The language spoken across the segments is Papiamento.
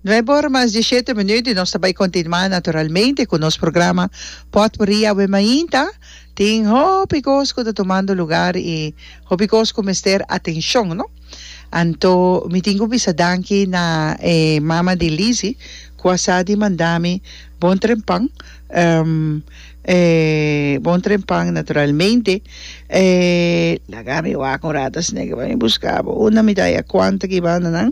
Nuebe ora mas diesiete minuut y nos ta bay continua naturalmente cu nos programa Potpourri awe mainta. Tin hopi cos cu ta tumando lugar y hopi cos cu mester atencion no. Anto mi tin cu bisa danki na e mama di Lizzy cu a sa di manda mi bon tren pan e bon tren pan naturalmente e laga mi wak un rato sneke pa mi busca bo unda mi ta haya cuanto ki banda nan.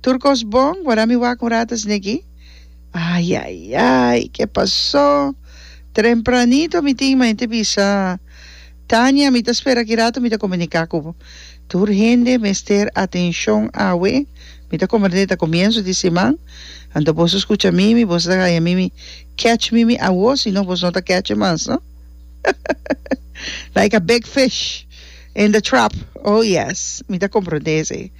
Tur kos bon, wara mi wak un rata sneki. Ai ai ai, ke pasó? Trempranito mi tin maña te bisa Tania mi ta spera aki rata mi ta komuniká ku bo. Tur hende mester atenshon awe, mi ta komprendé ta komienso di siman, anto boso skucha mimi, boso ta haña mimi kèch mimi awo, sino boso no ta kèche mas no. Like a big fish. In the trap oh yes mi ta comprende esey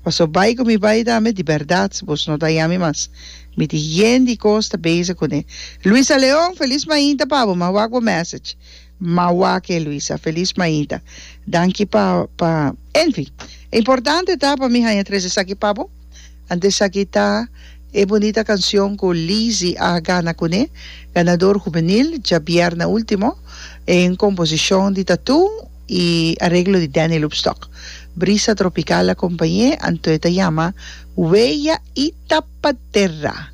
paso bay cu mi bay dame di berdad bos no daña mi mas mi tin yen di cos ta bezig cune Luisa Leon feliz mainta pa bo ma wak bo message ma wake Luisa feliz mainta danki pa pa enfin e importante ta pa mi haña tres esaki pa bo. Antes aki ta e bunita cancion cu Lizzy a gana cune, ganador juvenil, djabierna ultimo, en composicion di Tatú y areglo di Danny Lubstock. Brisa tropical a compañe, anto e ta yama Huella y Tapaterra.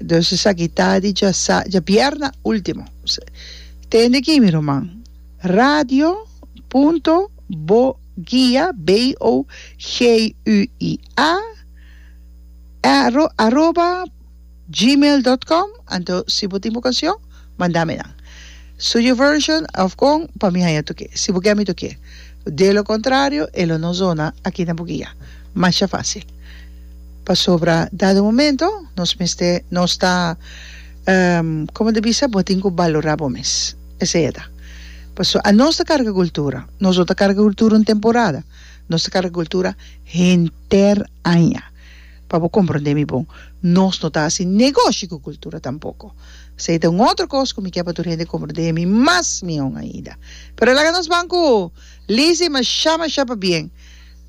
Dus esaki ta di djasa, djabierna ultimo. Tende aki mi ruman. Radio. Punto. Boguia, B-O-G-U-I. a aroba gmail dot com anto si bo tin bo canción manda mi nan su your version of con pa mi haya toke si bo ke mi toke de lo contrario e lo no zona aki na bugia masha facil pasobra dado momento nos mester nos ta como ta bisa bo tin cu balora bo mes esey e ta paso a nos ta carga cultura nos no ta carga cultura un temporada Nos ta carga cultura henter aña. Pa bo comprende mi bon, nos no ta haci negoshi cu cultura tampoco. Esey ta un otro cos cu mi kier pa tur hende comprende mi mas mihon ainda. Pero laga nos ban cu Lizzy masha masha pabien,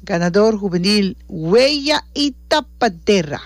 ganador juvenil Huella y Tapadera.